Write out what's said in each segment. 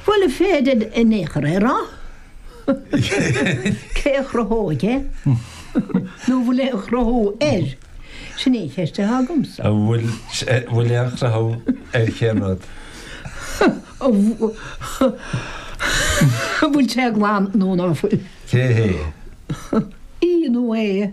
Bhuel, an féidir in aon chor é a rá. Cé a chruthóidh é? Nó an bhfuil aon chruthú air? Sin í an cheist atá agamsa. An bhfuil aon chruthú ar cén rud? An bhfuil sé glan nó ná fuil? Cé hé? Í nó é?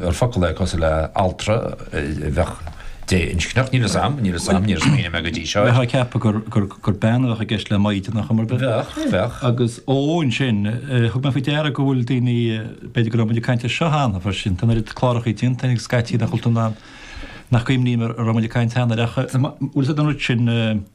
ar focal é cosúil le altra a bheadh dé-inscneach. Níl 'fhios a'm, níl 'fhios a'm, níor smaoinigh mé go dtí seo air. Bheifeá ag ceapadh gur bean a bheadh i gceist le maighdean ar chuma ar bith? Bheadh, bheadh. Agus ógh, ansin, thug mé faoi deara go bhfuil daoine, b'fhéidir go raibh muid ag caint air seo cheana freisin, tá an oiread cláracha déanta againn scaití in Chultúr na nach gcuimhním an raibh muid ag caint cheana air ach, bhfuil 'fhios a'd an rud sin,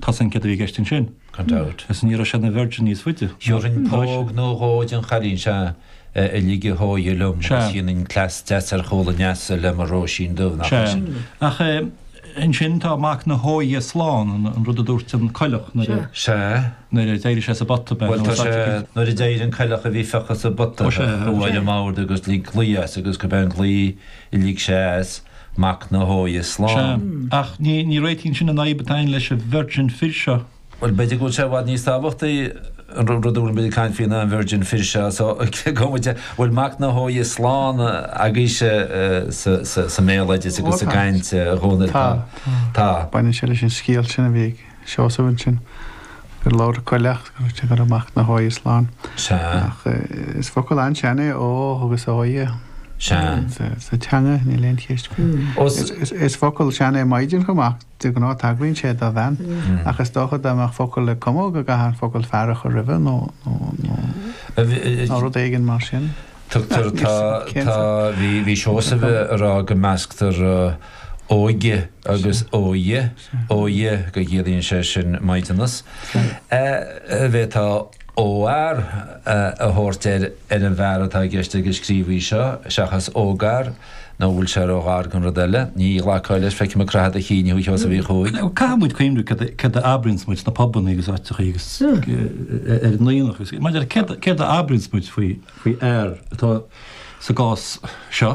Tá sagart i gceist ansin. Gan dabht. Is ní raibh sé ina Virgin níos faide. Gheobhainn póg nó dhó den chailín seo a lig a hóighe liom agus dhéanfainn cleas deas ar chúl an leasa le mo Róisín Dubh, nach raibh sin? Sea. Ach ansin tá mac na hóighe slán, an rud a dúirt an coileach nuair a. Sea. Nuair a d'éirigh sé sa bpota bean uasal a lig. Nuair a d'éirigh an coileach a bhí fiuchta sa bpota, bhuail an maor de agus lig glao as agus gurb é an glao. Lig sé as, mac na hóighe Sea. slán. Ach ní réitíonn sin an fhadhb atá againn leis an virgin fir seo. Bhuel, b'fhéidir go bhfuil sé i bhfad níos tábhachtaí an rud a bhfuil muid ag caint faoi ná an virgin fir seo. So, cé go bhfuil bhfuil mac na hóighe slán agaibhse sa mbéaloideas agus sa gcaint dhúinn ar fad, tá. Tá. Tá. Baineann sé leis an scéal sin a bhí ag. Seosamh ansin. Gur labhair an coileach go raibh mac na hóighe slán. Sea. Ach is focal an-sean é ógh agus óighe. Sea. Sa teanga níl aon cheist faoi. Is focal sean é maighdean chomh maith, de ghnáth tagraíonn sé do bhean, ach is dócha dá mbeadh focal le cumadh go gcaithfeá an focal fear a chur roimhe nó rud éigin mar sin. Tugtar tá tá bhí Seosamh a rá go measctar óige agus óighe. Óighe, go gciallaíonn sé sin maighdeanas an bhféadfá óghfhear a thabhairt ar an bhfear atá i gceist ag an scríobhaí seo seachas ógfhear nó an bhfuil sé róghar don rud eile. Ní ghlacfá leis, feicim ag croitheadh do chinn thú a Sheosaimh Uí Chuaig. Caithfidh muid cuimhniú céard a abraíonns muid sna pubanna agus áiteachaí agus ar an Aonach agus maidir le céard a abraíonns muid faoi fhear atá sa gcás seo.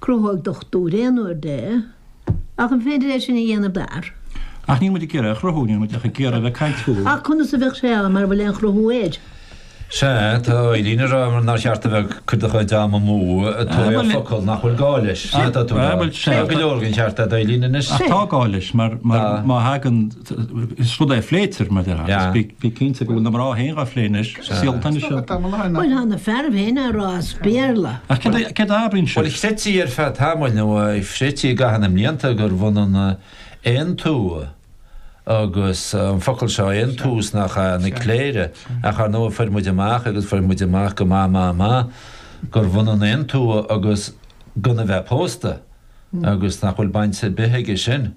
Cruthóidh dochtúir aon uair de, ach an féidir é sin a dhéanamh d'fhear? Ach níl muid ag iarraidh a chruthú, níl muid ach ag iarraidh a bheith ag caint faoi. Ach conas a bheadh sé ann mara bhfuil aon chruthú air? Sea, tá Eileen ag rá nár cheart a bheith ag cur do chuid ama amú ag tabhairt ar focal nach bhfuil gá leis. Sin atá tú ag rá. Tá go leor den cheart a'd Eileen anois. Ach tá gá leis mar má thagann. Is rud é a phléitear, mar dhea, agus bí cinnte go bhfuil na mná féin dhá phlé anois, saolta anois iad. Bhuel, tá na fearaibh féin á rá as Béarla. Ach cad é a mheabhraíonn sibh? Bhuel, chreidtí ar feadh tamaill, nó chreidtí i gcaitheamh na mblianta, gurbh ionann aontumha agus an focal seo, aontumha is nach ea, na cléire. Ach ar ndóigh, fuair muid amach, agus fuair muid amach go maith maith maith, gurbh ionann aontumha agus gan a bheith pósta, agus nach bhfuil baint ar bith aige sin.